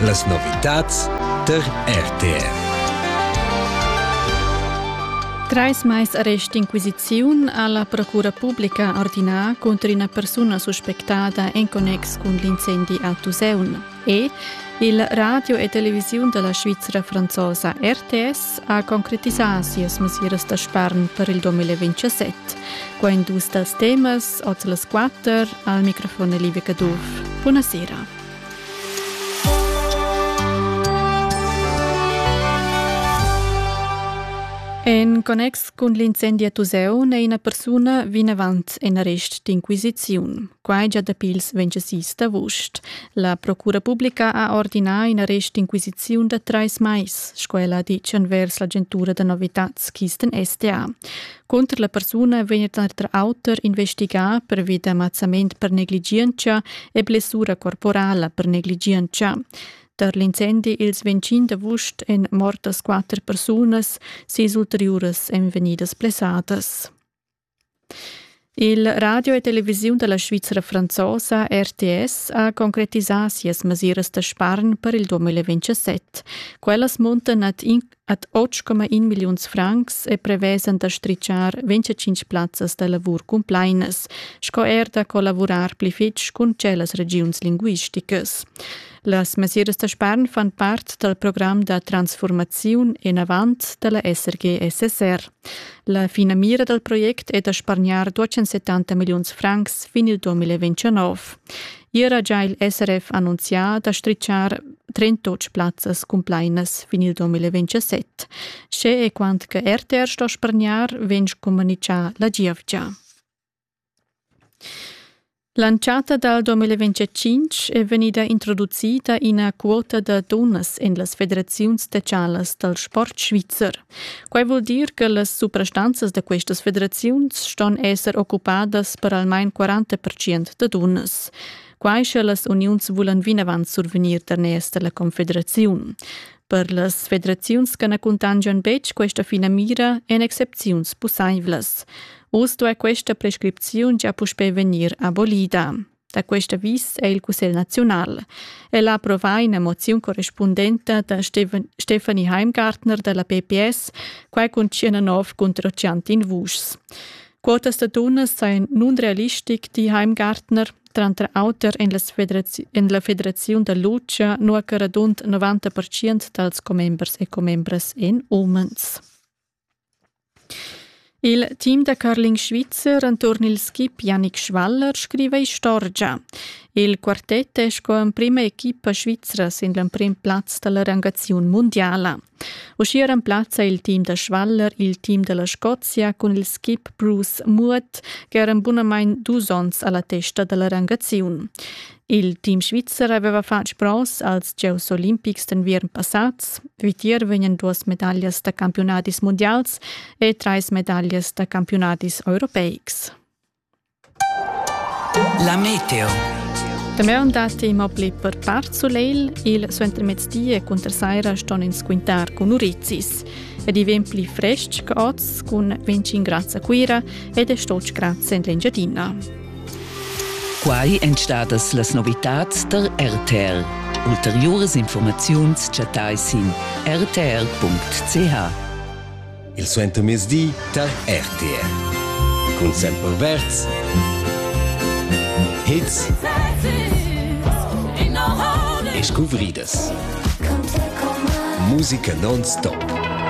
Las novitads tar RTR. Trais mais arrest d'inquisiziun ha la Procura publica ordinà cunter ina persuna suspectada en connex cun l'incendi a Tuseun. E il radio e televisiun da la Svizra franzosa RTS ha concretisà sias mesiras da spargn per il 2027. Qua in dus dals temas, oz las quatter, al microfon è Livia Caduff. Buonasera. En connex cun l'incendi a Tuseu è ina persuna vinavant en arrest d'inquisiziun. Quai già dapi ils 26 d'avust. La Procura publica ha ordinà in arrest d'inquisiziun da trais mais, sco ella ha ditg envers l'agentura da novitads Kisten SDA. Cunter la persuna vegn tranter auter investigà pervi da mazzament per negligientscha e blessura corporala per negligientscha. Tar l'incendi ils 25 d'avust èn mortas quatter persunas, sis ulteriuras èn vegnidas blessadas. Il radio e televisiun da la Svizra franzosa RTS ha concretisà sias mesiras da spargn per il 2027. Quellas muntan ad, in, ad 8,1 milliuns francs e prevesan da stritschar 25 plazzas da lavur cumplainas, sco er da collavurar pli fitg cun tschellas regiuns linguisticas. Las mesiras da spargn fan part dal program da transfurmaziun enavant da la SRG-SSR. La finamira dal project è da spargnar 270 milliuns francs fin il 2029. Ier ha già il SRF annunzià da strizzar 38 plazzas cumplainas fin il 2027. Sche e quant che RTR sto spargnar, vegn communicà la giovgia. L'entschatta dal 2025 è vegnida introducida ina quota da dunnas en las federaziuns socialas dal sport svizzer. Quai vul dir che las suprastanzas da questas federaziuns ston esser occupadas per almain 40 da dunnas. Quai sche las uniuns vulan vinavant survegnir daners da la confederaziun. Per las federaziuns che na cuntangian betg questa finamira èn excepziuns pussaivlas. Oz duai questa prescripziun gia puspè vegnir abolida. Da questa vis è il Cussegl naziunal. El ha approvà ina moziun correspundenta da Stefanie Heimgartner da la PPS, quai cun 19 contro chantin vuschs. Quotas da dunnas sajan nunrealistic, di Heimgartner. tranter auter en, la federazi- en la federaziun da Lucia, nua che radund 90 percent dals commembers e commembras èn umens. Il team da curling svizzer enturn il skip Yannick Schwaller scriva istorgia. Il quartet è sco emprima equipa svizra sin l'emprim plaz da la rangaziun mundiala. Uschia remplazza il team da Schwaller il team da la Scozia cun il skip Bruce Murat ch'era bunamain dus onns a la testa da la rangaziun. Il team svizzer aveva fatg bronz als Gieus olimpics d'enviern passads. Vitier vegnan duas medaglias da campiunadis mundials e trais medaglias da campiunadis europeics. La meteo. Damaun datti immobli per part sulegl, il suentermezdi e cunter saira ston ins quintar cun urizis. Ed i vegn pli frestg che oz cun 25 grad a Cuira ed è stotg grads en l'Engiadina. Quai èn stadas las novitads der RTL. Ulteriuras informaziuns chattai sin rtr.ch. il suentermezdi tar RTR. Cun Semper Verz. Hits e scuvridas. Musica non-stop.